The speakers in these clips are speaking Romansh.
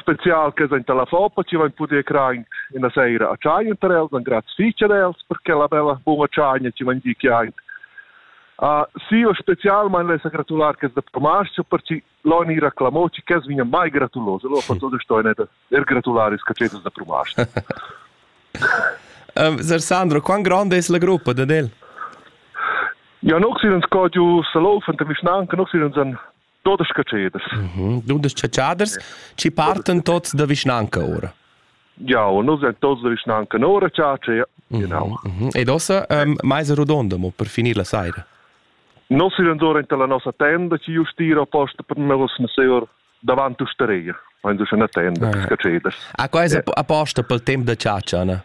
spezial che sainta la foppa chi vain pudü crain üna saira a tschagna tar els, dan grazs fich ad els per quella bella buna tschagna chi vain dit chi aint. Uh, sì, specialmain lessa gratular che da Tomascio perché l'oni reclamò ci che vigna mai gratuloso, lo fa tutto sto ne er gratularis che c'è da Tomascio. um, Sir Sandro, quan grande es la gruppa da del? Ja, noxinen sco giu salofan te mischnanke, noxinen san Dudesch catschaders. Dudesch catschaders ci partan tots da vischnanca ora. Ja, noi sind tots da vischnanca ora chatscha, genau. Ed ossa ähm, meisa rodonda mo per finir la saira. Non si rendora in la nostra tenda ci just tira posta per me was seur davanti usteria. Wenn du schon eine Tenda, ah, ja. Catschaders. Ah, qua è a posta per il tempo da ciaccia, ne?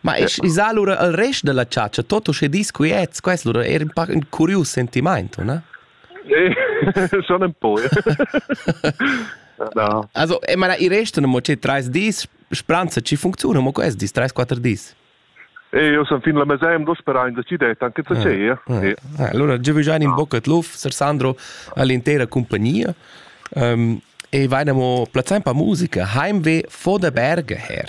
Ma es isà lura al rest da la chatscha tot uschè disquiet, quest lura er ün pac ün curius sentimaint, o na? Schon ein po. no. Also, e ma i restano mo che trais dis spranza ci funziona, mo quest dis trais quattro dis. E io sono fin la museum dos per anni decidete anche da ce. Allora già in bocca luf, Sir Sandro all'intera compagnia. Um, e vainamo plazzan pa musica, heimweh vor der Berge her.